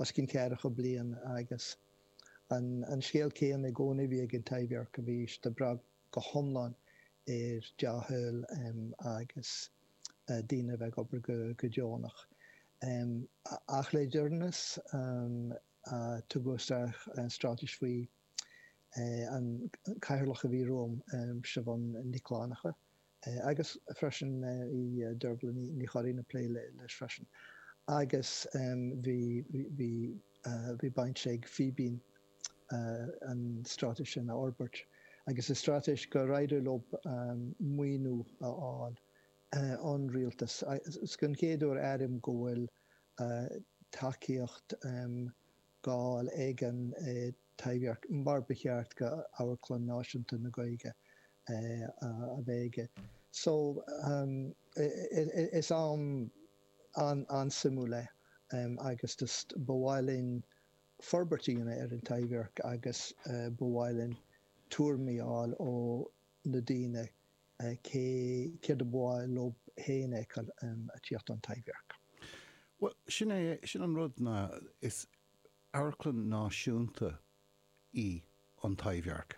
os cionn ceathracha bliain agus an scéal céanna i gcónaí a bhí ag an Taibhdhearc go raibh sé ag brath go hiomlán ar dea-thoil agus daoine a bheith ag obair go deonach. Ach le deireanas tugadh isteach stráitis faoi an cathaoirleach a bhí romham, Siubhán Nic Fhlannacha, agus freisin bhí Dearbhail Ní Churraoin ag plé leis freisin agus bhí baint ag Fíbín an stráitéis sin a fhorbairt agus is stráitéis gur éirigh leo maoiniú a fháil ón Rialtas. Is den chéad uair a airím go bhfuil tacaíocht. dhá fháil ag an Taibhdhearc mar ba cheart d'amharclann náisiúnta na Gaeilge a bheith aige. So is am an-suimiúil é agus just ba mhaith linn forbairt a dhéanamh ar an Taibhdhearc agus ba mhaith linn tuairimí a fháil ó na daoine Cé céard ab áil leo a fheiceáil ag tíocht ón Taibhdhearc? Bhuel, sin é, sin an rud ná is amharclann náisiúnta í an Taibhdhearc,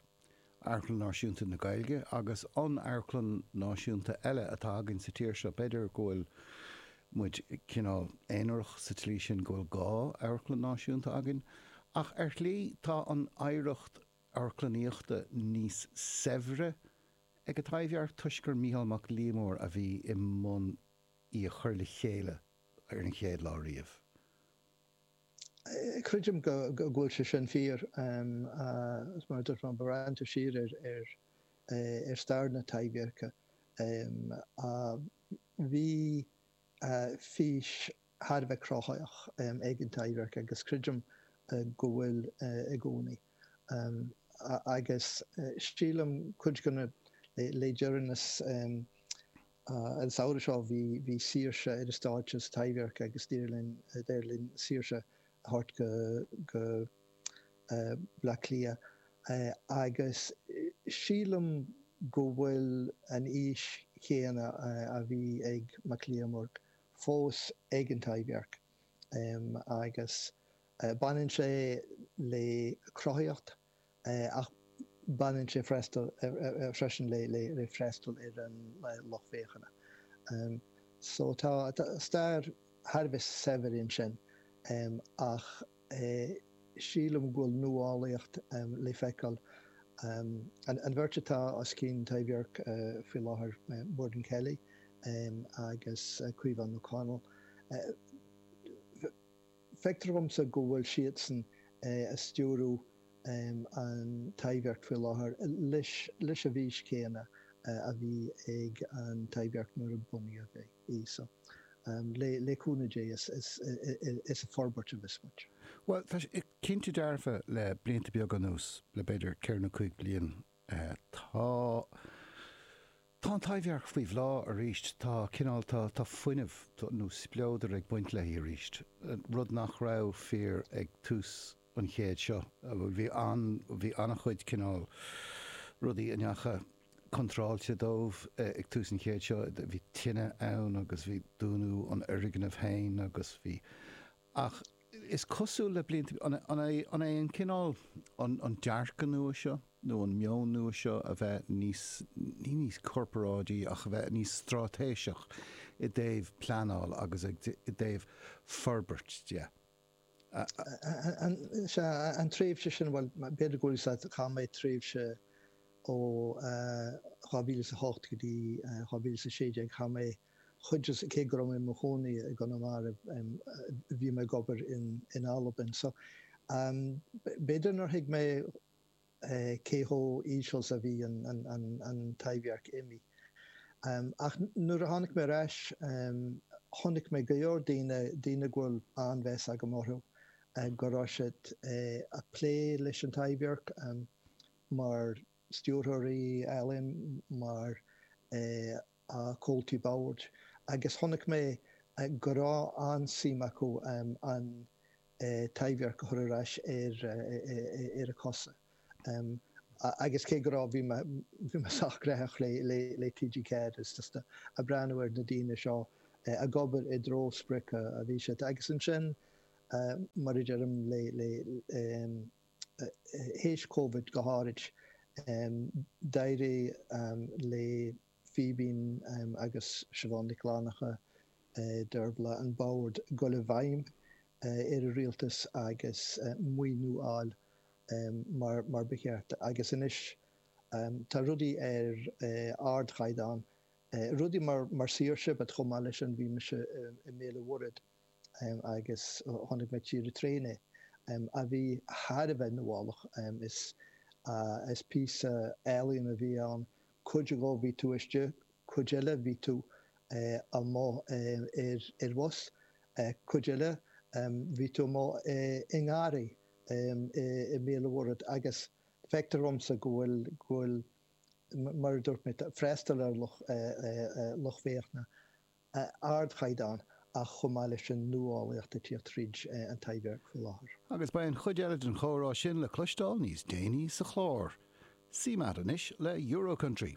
amharclann náisiúnta na Gaeilge agus tá amharclann náisiúnta eile atá againn sa tír seo. B'fhéidir go bhfuil muid cineál aonarach sa tslí sin go bhfuil dhá amharclann náisiúnta againn ach ar shlí tá an oidhreacht amharclannaíochta níos saibhre ag an Taibhdhearc toisc gur Micheál Mac Liammóir a bhí i mbun í a chur le chéile ar an chéad lá riamh. Creidim go bhfuil sé sin fíor, agus mar a dúirt mé, má bhreathnaítear siar ar stair na Taibhdheirce, bhí fís thar a bheith cruthaitheach, ag an Taibhdhearc agus creidim go bhfuil i gcónaí. Agus sílim cuid de na le deireanas an samhradh seo bhí saoirse ar an stáitse sa Taibhdhearc agus d'éirigh linn saoirse a thabhairt go Baile Átha Cliath agus sílim go bhfuil an fhís chéanna a bhí ag Mac Liammóir fós ag an Taibhdhearc agus baineann sé le cruthaitheacht ach baineann sé freisin le freastal ar an lucht féachana so tá stair thar a bheith saibhir ansin ach sílim go bhfuil nuálaíocht le feiceáil. An bheirt atá os cionn Taibhdhearc faoi láthair, Muireann Kelly agus Caoimhe Ní Chonghaile, feictear dhomsa go bhfuil siadsan ag stiúradh an Taibhdhearc faoi láthair leis an bhfís chéanna a bhí ag an Taibhdhearc nuair a bunaíodh é. í. So, le cúnamh Dé is ag forbairt a bheas muid. Bhuel, tá sé cinnte dearfa le blianta beaga anuas, le b'fhéidir ceithre nó cúig bliain, tá, tá an Taibhdhearc faoi bhláth arís, tá cineál, tá, tá fuinneamh nó spleodar ag baint léi arís, rud nach raibh fíor ag tús an chéid seo, bhí an, bhí an-chuid cineál rudaí a ndeachaigh, contráilte dóibh ag tús an chéid seo. Bhí tine ann agus bhí dúnadh an fhoirgnimh féin agus bhí. Ach is cosúil le blianta. An é an cineál, an dearcadh nua seo nó an meon nua seo a bheith níos, ní níos corparáidí ach a bheith níos stráitéiseach i dtaobh pleanáil agus i dtaobh forbairt de? Sea, an tréimhse sin, bhuel, b'fhéidir go bhfuil, sea, chaith mé tréimhse ó 2008 go dtí 2016, chaith mé cuid de, cé go raibh mé i mo chónaí i gConamara, bhí mé ag obair in Albain. So, b'fhéidir nár thuig mé, cé chomh íseal 's a bhí an Taibhdhearc imithe. Ach nuair a tháinig mé ar ais, chonaic mé go leor daoine, daoine go bhfuil an-mheas agam orthu, go raibh siad a' plé leis an Taibhdhearc mar stiúrthóirí ealaíon, mar. a Comhaltaí Boird, agus chonaic mé go raibh an-suim acu an Taibhdhearc a chur ar ais ar a cosa agus cé go raibh, bhí mé sách graitheach le TG4 is just ag breathnú ar na daoine seo ag obair i dtreo sprioc a bhí siad, agus ansin, mar a deirim le. th'éis Covid go háirid. D'éirigh le Fíbín agus Siobhán Nic Fhlannchadha, Dervla an Bord, dul i bhfeidhm ar an Rialtas agus maoiniú a fháil mar ba cheart agus anois tá rudaí ar ardchaighdeán. Rudaí mar Saoirse but chomh maith leis sin bhí mise i mBéal an Mhuirthead. agus chonaic mé trí rté inné, a bhí thar a bheith nuálach. Is píosa ealaíon a bhí ann, cuid dhó bhí tú istigh, cuid eile bhí tú amuigh ar bhus, cuid eile bhí tú amuigh i ngarraí i mBéal an Mhuirthead agus feictear dhomsa go bhfuil, mar a dúirt mé, freastal ar lucht féachana ar ardchaighdeán ach chomh maith leis an nuálaíocht ag tíocht tríd an Taibhdhearc faoi láthair. Agus beidh an chuid eile den chomhrá sin le cloisteáil níos déanaí sa chlár. CMAT anois le Euro Country.